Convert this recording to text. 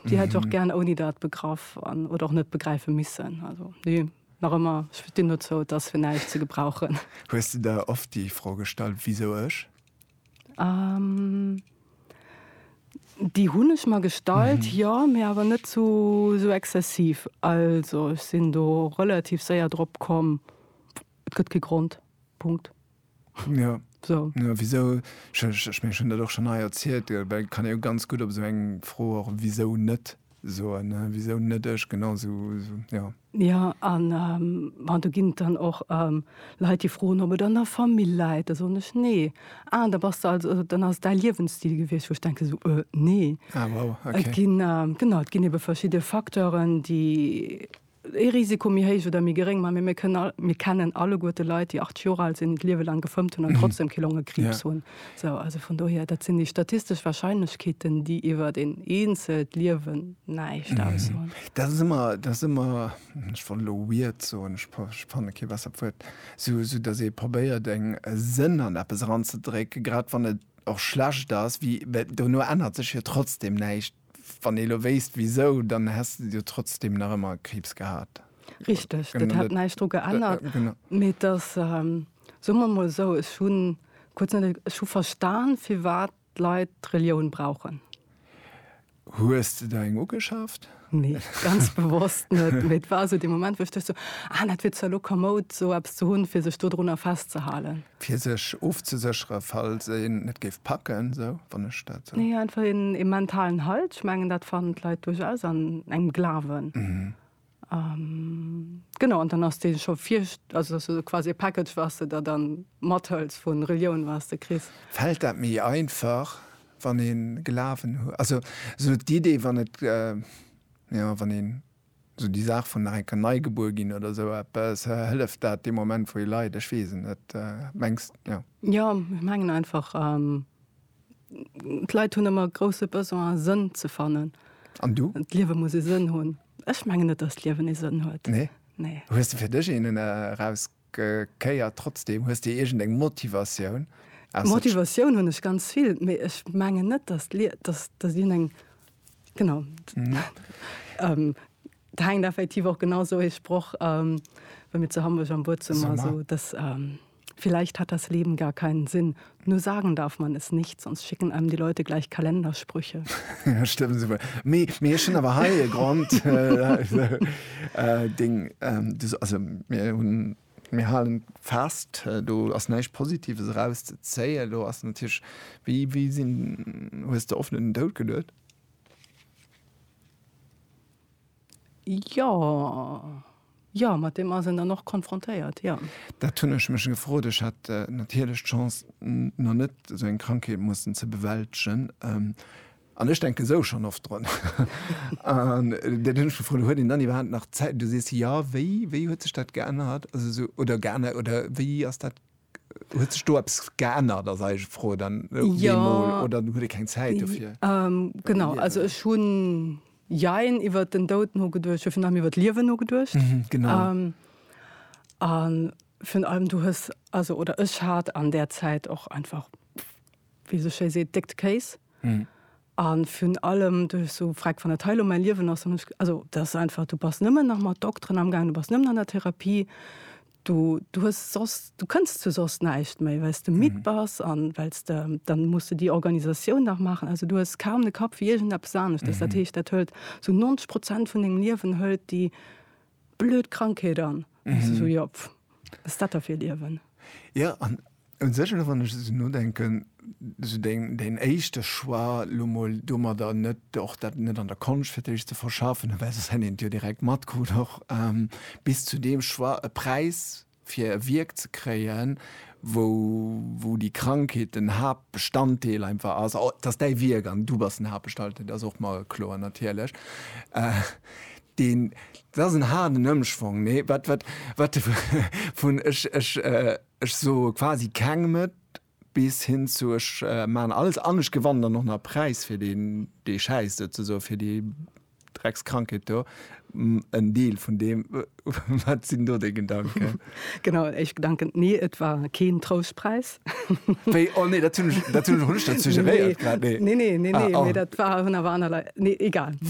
Déi hätt ech och gären ouni dat begraff an, oder och net begräife missen. Also nee, nach ëmmer, ech stinn dozou, et ass fir näischt ze gebrauchen. Hues de der oft déi Fro gestallt, Wisou ech? Déi hunn ech mer gestallt, jo, mee awer net sou exzessiv. Also ech sinn do relativ séier drop komm, et gëtt kee Grond. Punkt. Jo. So. Jo, wisou, ech, ech, ech mengen, ech hunn dat och schonn hei erzielt, gell, well et kann ee jo ganz gutt op esou eng Fro och wisou net soen, ne, wisou net ech, genau esou, esou, jo. Jo, an bon, do ginn et dann och Leit, déi froen, ob et an der Famill läit. Da soen ech, Nee. Ah, da bass de also, also dann ass et däi Liewensstil gewiescht, wou ech denken esou, Äh, nee. Ah, wow, okay. Et ginn, genau, et ginn ebe verschidde Facteuren, déi. ee Risiko méi héich oder méi geréng, mä mir kënnen all, mir kennen alleguer de Leit, déi 80 Jor al sinn, d'Liewe lang gefëmmt hunn an trotzdem kee Longekriibs hunn. Sou, also vun dohier, dat sinn déi statistesch Warscheinlechkeeten, déi iwwert een eenzelt Liewen näischt aussoen. Dat ass ëmmer, dat ass ëmmer, ech wollt elo weird soen, ech fanne kee bessert Wuert, sou, sou datt ee probéiert eng e Sënn an eppes eranzedrécken, grad wann et och schlecht ass, wéi, well dono ännert sech jo trotzdem näischt. Wann ee lo wéisst wisou, dann häss de jo trotzdem nach ëmmer Kriibs gehat. Richteg, dat hätt näischt dru geännert. Mee et ass, soe mer emol esou, ech hu kuerz net, ech hu verstan, firwat d'Leit d'Relioun brauchen. Hues de der eng ugeschaaft? Nee, ganz bewosst net. Mee et war esou dee Moment, wou ech duecht sou, ah, dat wier zwar lo kamoud, esou eppes ze hunn, fir sech dodrunner festzehalen. Fir sech ofzesécheren, falls een et géif packen, sou, wann ech dat sou. Nee, einfach een, ee mentalen Halt. Ech mengen, dat fannen d'Leit duerchaus an engem Glawen. Genau, an dann ass dee scho vir, also dass du sou quasi e Package, wat s de der dann mathëls vu Relioun, wat s de kriss. Fält dat méi einfach, wann ee Glawen huet? Also sou d'Idee, wann et, jo, wann een. Sou déi Saach vun nach eng Kéier nei gebuer ginn oder sou eppes, hëlleft dat dee Moment wou ee leit? Ech weess et net, mengs jo? Jo, ech mengen einfach d'Leit hunn ëmmer e grousse Besoin e Sënn ze fannen. An du? D'Liewe muss e Sënn hunn. Ech mengen net, datt d'Liewen ee Sënn huet. Nee? Nee. Hues de fir dech een eraus? Kéier trotzdem? Hues de iergend eng Motivatioun? Motivatioun hunn ech ganz vill, mee ech mengen net, datt d'Liewen eng. Genau. Et hänkt effektiv och genau esou ee Sproch, wa mir zu Hamburg am Buet sinn, also dass, Vielleicht hat das Leben gar keinen Sinn. Nur sagen darf man es nicht, sonst schicken einem die Leute gleich Kalendersprüche. ja, stimmt super. Mir, mir schon aber heil Grund. Äh, äh, äh, Ding, ähm, das, also, mir hun, mir halen fast, äh, du hast nicht Positives rauszuzählen, du hast natürlich, wie, wie sind, hast du offenen Tod gelöst? Jo, jo, mat deem ass een dann och konfrontéiert, jo. Dat hunn ech mech gefrot. Ech hat natierlech d'Chance, nach net esou eng Krankheet mussen ze bewältegen. An ech denken esou schonn oft drun. An dat hunn ech gefrot, Huet een dann iwwerhaapt nach Zäit? Du sees, Jo, wéi, wéi huet sech dat geännert? Also esou, oder geännert, oder wéi ass dat Huet sech do eppes geännert ass eis Fro dann deemol oder huet Dir keng Zäit dofir? Genau, also ech hunn jein iwwert den Doud nogeduecht, ech hu virun allem iwwert d'Liewen nogeduecht. Genau. An virun allem du hues, also oder ech hat an där Zäit och einfach, wéi ee sou schéi seet, déckt Kéis. An virun allem duerch esou Fräck, wann dat hei elo mäi Liewen ass, dann hu ech, also dat ass einfach, du bass nëmmen nach mat Dokteren amgaangen, du bass nëmmen an der Therapie, Du, du hues soss, du kënns zu soss näischt méi, well s de midd bass an well s de, dann muss de déi Organisatioun nach maachen. Also du hues kaum de Kapp fir iergendeppes aneschters. Dat heescht, dat hëlt sou 90 Prozent vun dengem Liewen, hëlt déi blöd Krankheet an. An du sou, jo, pff, wat ass dat da fir e Liewen? Jo, an Un sech, elo wann ech esou nodenken, esou deen éischte Choix, elo mol domadder net, och dat net an der Konscht fir d'éischt ze verschaffen, well soss hätt een et jo direkt matkrut och, bis zu deem Choix, e Präis fir e Wierk ze kréien, wou déi Krankheet den Haaptbestanddeel einfach ass, et ass däi Wierk an du bass den Haaptbestaltdeel, dat ass och mer kloer natierlech, deen, dat ass en haarden Ëmschwong, nee, wat, wat, wat, vun, ech, ech. Ech soe quasi kengem et, bis hin zu ech maachen alles an ech gewannen dann och nach e Präis fir deen, dee schäisst, souzesoen, fir déi Dreckskrankheet do. En Deel vun deem. Wat sinn do déi Gedanken? Genau, en éischt Gedanken, Nee, et war keen Troustpräis. Wéi? Oh nee, dat hunn ech, dat hunn ech och net suggeréiert grad, nee. Nee, nee, nee, nee, mee dat war, hunn awer aner Leit, nee, egal.